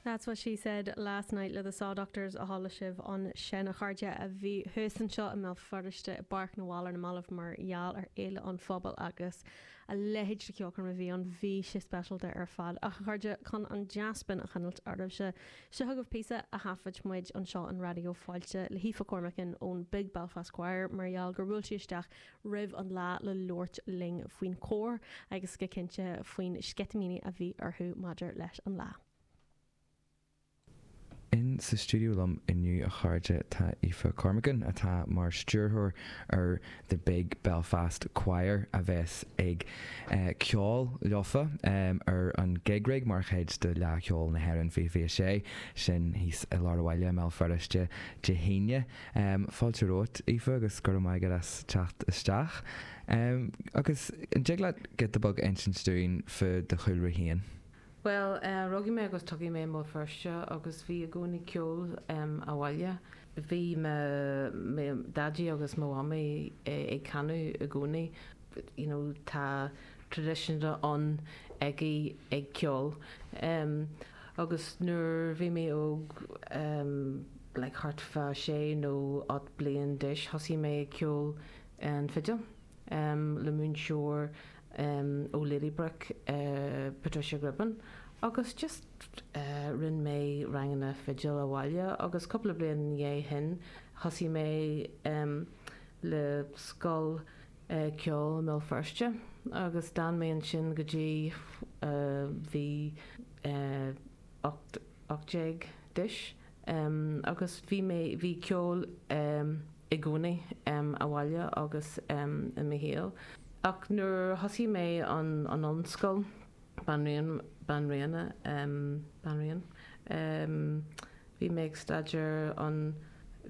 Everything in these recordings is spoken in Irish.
That's what she said last night le The Sawdoctors a chuala sibh ansin a chairde a bhí thuas anseo i mBéal Feirste i bPáirc na bhFál ar na mallaibh mar gheall ar Fhéile an Phobail agus a leithéid de cheolchoirm a bhí ann bhí sé speisialta ar fad ach a chairde chun an dea-spin a choinneáil oraibhse seo chugaibh píosa a thaifid muid anseo in Raidió Fáilte le hAoife Cormican ón Big Belfast Choir mar gheall gur bhuail sí isteach roimh an lá le labhairt linn faoin chóir agus go cinnte faoin sceitimíní a bhí orthu maidir leis an lá. In sa stiúideo liom inniu a chairde tá Aoife Cormican atá mar stiúrthóir ar The Big Belfast Choir a bheas ag ceol leofa ar an Gig Rig mar chuid de Fhleadh Cheoil na hÉireann 2026, sin thíos i lár an bhaile i mBéal Feirste Dé hAoine. Fáilte romhat, Aoife, agus go raibh maith agat as teacht isteach. Agus an dtig leat giota beag a insint dúinn faoi do chúlra féin? Bhuel, rugadh mé agus tógadh mé i mBéal Feirste agus bhí i gcónaí ceol i mo bhaile. Bhí mo dhaidí agus mo mhamaí ag canadh i gcónaí. you know tá traidisiún ann ag ag ceol em agus nuair bhí mé óg em like thart fá sé nó ocht bliain d'aois thosaigh mé ag ceol ar an fidil em le múinteoir em ó Ladybrook eh Patricia Gribben agus just eh rinne mé ranganna fidil abhaile agus cúpla bliain i ndiaidh sin thosaigh mé em le scoil ceoil i mBéal Feirste agus d'fhan mé ansin go dtí bhí mé ocht déag d'aois agus bhí mé, bhí ceol i gcónaí a'm abhaile agus i mo shaol ach nuair a thosaigh mé ar an ollscoil, banríon, banríona, banríon. Bhí mé ag staidéar an,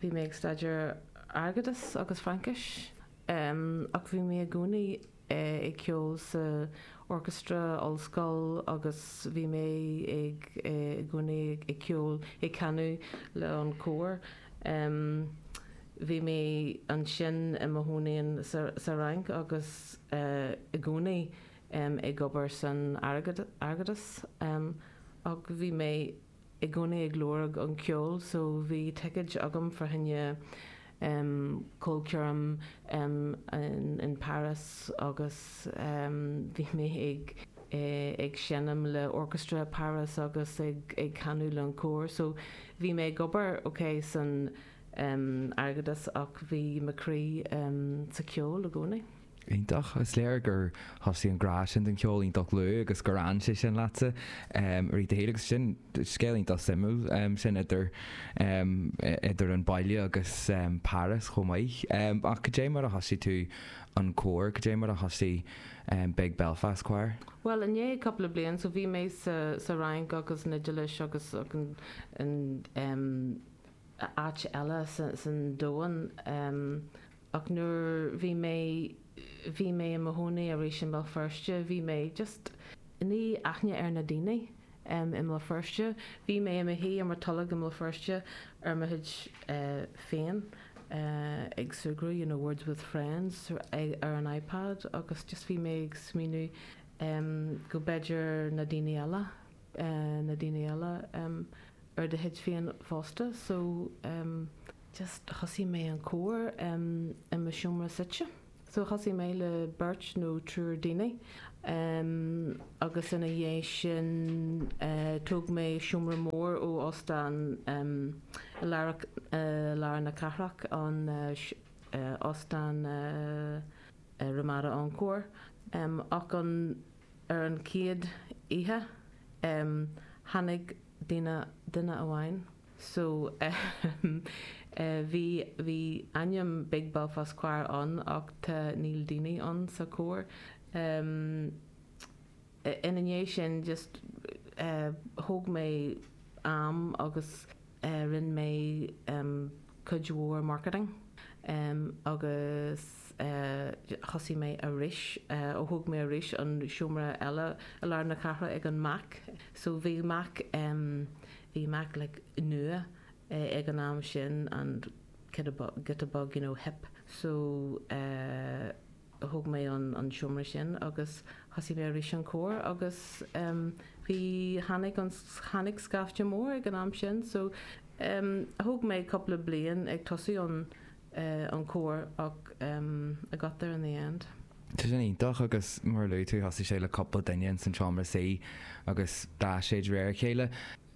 bhí mé ag staidéar airgeadas agus Fraincis em ach bhí mé i gcónaí eh ag ceol sa orchestra ollscoil agus bhí mé ag eh i gcónaí ag ceol, ag canadh le an cór em bhí mé ansin i mo chónaí ann sa, sa Fhrainc agus eh i gcónaí em ag obair san airgead, airgeadas em ach bhí mé. i gcónaí ag lorg an ceol so bhí ticéad agam fá choinne ehm ceolchoirm ehm in Paris agus ehm bhí mé ag eh ag seinm le Orchestre Paris agus ag ag canadh le an cór so bhí mé ag obair ok san ehm airgeadas ach bhí mo croí ehm sa ceol i gcónaí. Iontach. Is léir gur thosaigh an grá sin don cheol iontach luath agus gur fhan sé sin leatsa i rith do shaoil agus sin scéal iontach suimiúil sin idir idir an baile agus Páras chomh maith. Ach cad é mar a thosaigh tú an cór, cad é mar a thosaigh Big Belfast Choir? Bhuel i ndiaidh cúpla bliain so bhí mé sa sa Fhrainc agus an Iodáil agus an áit eile san domhan. Ach nuair bhí mé, bhí mé i mo chónaí arís i mBéal Feirste, bhí mé just, ní aithne ar na daoine em i mBéal Feirste, bhí mé i mo shuí ar mo tolg i mBéal Feirste ar mo chuid féin eh ag súgradh you know words with friends eh ar an iPad agus just bhí mé ag smaoineamh em go b'fhéidir na daoine eile eh na daoine eile em ar do chuid féin fosta so em just thosaigh mé an cór em i mo seomra suite so thosaigh mé le beirt nó triúr daoine em agus ina dhiaidh sin eh thóg mé seomra mór ó óstán em i lár eh i lár na cathrach an eh óstán eh Ramada Encore em ach an ar an chéad oíche em tháinig daoine duine amháin So, ahem, eh, bhí, bhí ainm Big Belfast Choir ann ach tá, níl daoine ann sa chór. Ahem, eh, ina dhiaidh sin just, eh, thóg mé am agus, eh, rinne mé, ahem, cuid mhór marketing. Ahem, agus, eh, thosaigh mé arís, eh, ó thóg mé arís an seomra eile i lár na cathrach ag an Mac. So bhí Mac, ahem, Bhí Mac like nua ag an am sin, an giota bog, you know, hip, so thóg mé an seomra sin agus thosaigh mé arís an cór agus em bhí, tháinig an, tháinig scaifte mór ag an am sin so em thóg mé cúpla bliain ag tosú an, an cór ach I got there in the end. Tá sin iontach agus mar a luaigh tú thosaigh sé le cúpla duine ins an tseomra suí agus d'fhás sé de réir a chéile.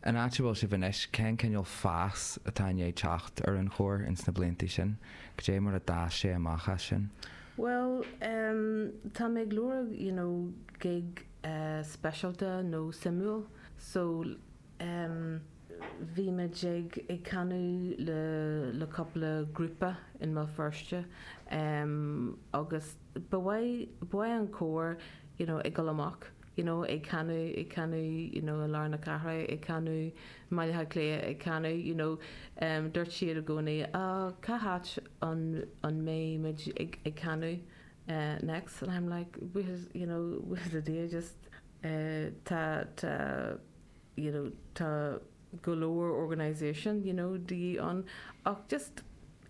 An áit a bhfuil sibh anois, cén cineál fás atá i ndiaidh teacht ar an chór ins na blianta sin? Cad é mar a d'fhás sé amach as sin? Bhuel em tá mé ag lorg you know gig speisialta nó suimiúil so em bhímid ag ag canadh le le cúpla grúpa i mBéal Feirste em agus ba mhaith ba mhaith an cór you know ag dul amach you know ag canadh ag canadh you know i lár na cathrach ag canadh i mBaile Átha Cliath ag canadh you know em dúirt siad i gcónaí ó cá háit an an mbeidh muid ag ag canadh eh next and I'm like we you know we did just eh tá tá you know tá go leor organisation you know de dhíth ann ach just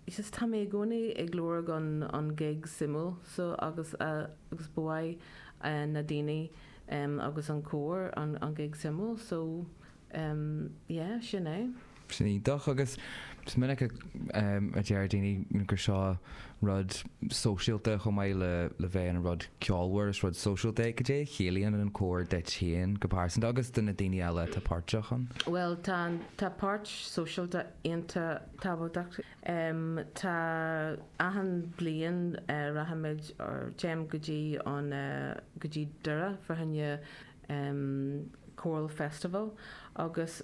just tá mé i gcónaí ag lorg an an gig suimiúil so agus agus ba mhaith na daoine em ins an chór an an gig suimiúil so em yeah sin é. Sin é. Go deas agus is minic a deir daoine gur seo rud sóisialta chomh maith le bheith ina rud ceolmhar, is rud sóisialta é. Cad é a chiallaíonn an cór duit féin go pearsanta agus do na daoine eile atá páirteach ann? Bhuel, tá páirt sóisialta iontach tábhachtach. Tá achan bliain rachaimid or téimid go dtí an go dtí Doire for an International Choral Festival agus.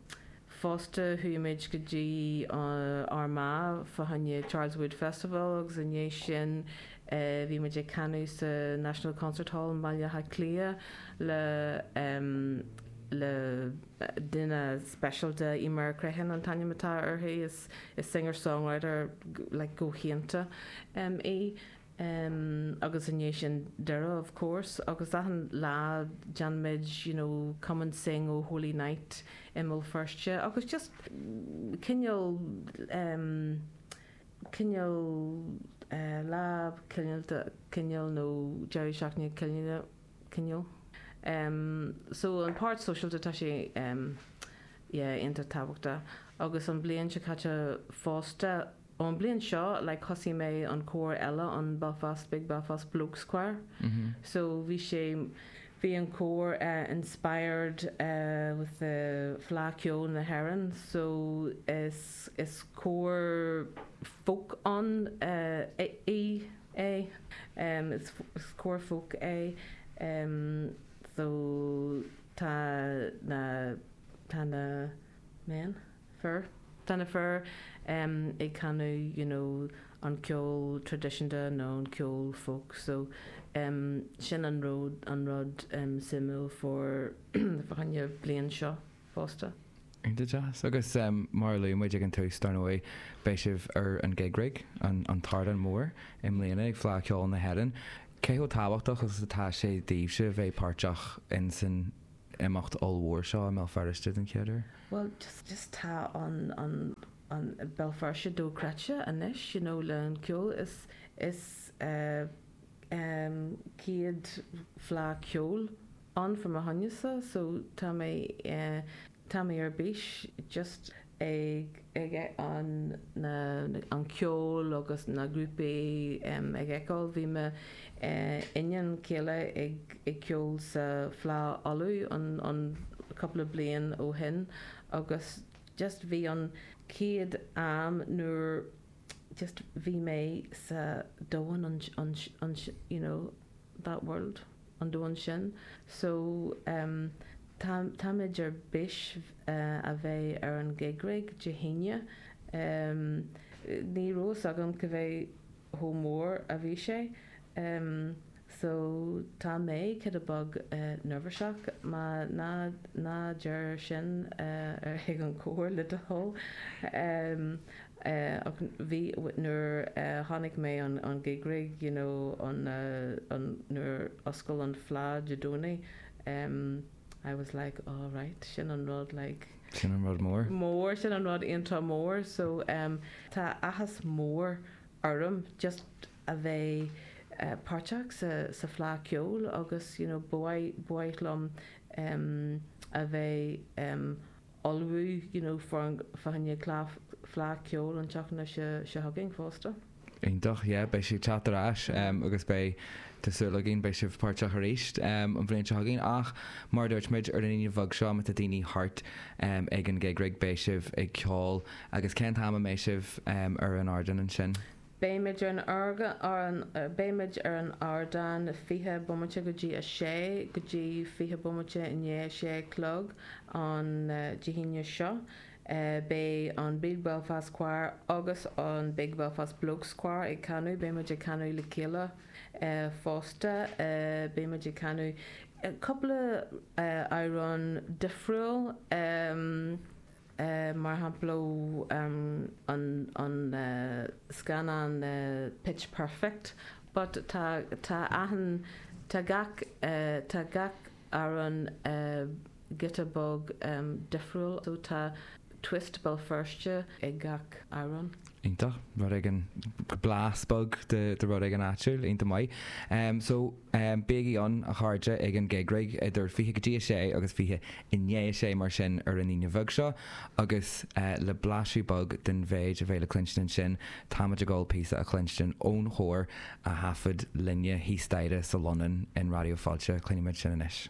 Fosta chuaigh muid go dtí Armagh fá choinne Charles Wood Festival agus i ndiaidh sin bhí muid ag canadh sa National Concert Hall i mBaile Átha Cliath le le duine speisialta, Eimear Crehan an t-ainm atá uirthi, is singer-songwriter like galánta í. em agus i ndiaidh sin Doire of course agus achan bliain déanaimid you know come and sing O Holy Night i mBéal Feirste agus just cineál em cineál eh lá ceolta cineál nó deireadh seachtaine cineál cineál em so an páirt sóisialta tá sé em yeah iontach tábhachtach agus an bliain seo caite fosta Ón blian seo like thosaigh mé an cór eile an Belfast Big Belfast Blokes choir so bhí sé bhí an cór inspired with the Fleadh Ceoil na hÉireann so is is cór folk ann é is is cór folk é so tá na tá na men, fir, tá na fir ag canadh you know an ceol traidisiúnta nó an ceol folk so sin an rud an rud suimiúil fá choinne an bhliain seo fosta. Go deas agus mar a luaigh muid ag an tús dar ndóigh beidh sibh ar an Gig Rig, an an t-ardán mór i mbliana ag Fleadh Cheoil na hÉireann. Cé chomh tábhachtach agus atá sé daoibhse bheith páirteach insan imeacht ollmhór seo i mBéal Feirste den chéad uair? Bhuel, just tá an, an, an, Béal Feirste dochreidte anois, you know, le an ceol, is, is eh, em, céad fleadh ceoil ann from a shúnasa, so tá mé eh, tá mé ar bís just, ag an ceol agus na grúpaí ag fheiceáil. Bhí mo iníon chéile ag ceol sa Fleá Uladh an cúpla bliain ó shin agus just bhí an chéad am nuair just bhí mé sa domhan you know that world. an domhan sin so táimid ar bís a bheith ar an gig rig Dé hAoine. Ní raibh fhios agam cad é chomh mór a bhí sé so tá mé giota beag neirbhiseach má ná deir sin chuig an chór le do thoil. Ach bhí, nuair a chonaic mé an gig rig, you know, an, an, nuair a oscail an fleá Dé Domhnaigh, em, I was like, oh right, sin an rud, like, Sin an rud mór, sin an rud iontach mór. So, em, tá áthas mór orm just a bheith, eh, páirteach sa, sa Fleá Ceoil agus, you know, ba mhaith, ba mhaith liom, em, a bheith, em, ullmhú you know for an fleadh Fleadh Ceoil an tseachtain seo chugainn fosta. Iontach, yeah beidh sí ag teacht ar ais agus beidh, tá súil againn, beidh sibh páirteach arís an bhliain seo chugainn ach mar a dúirt muid ar an Aoine bheag seo má tá daoine thart ag an gig rig beidh sibh ag ceol agus cén t-am a mbeidh sibh ar an ardán ansin? Beimid ar an ardán 20 bomaite go dtí 6 go dtí 20 bomaite i ndiaidh a sé a chlog an Dé hAoine seo. Beidh an Big Belfast Choir agus an Big Belfast Blokes Choir ag canadh. Beimid ag canadh le chéile fosta. Beimid ag canadh cúpla amhrán difriúil. mar shampla an scannán Pitch Perfect but tá achan, tá gach, tá gach amhrán giota beag difriúil so tá twist Béal Feirste ag gach amhrán. Iontach. Rud éigin, blas beag de rud éigin áitiúil. Iontach maith. So, bígí ann a chairde ag an gig rig idir fiche go dtí a sé agus fiche i ndiaidh a sé mar sin ar an Aoine bheag seo agus le blaiseadh beag den mhéid a bheidh le cluinstin ansin táimid ag gabháil píosa a chluinstin ón chór a thaifead linne thíos staighre sa Lónlann in Raidió Fáilte. Cluinfimid sin anois.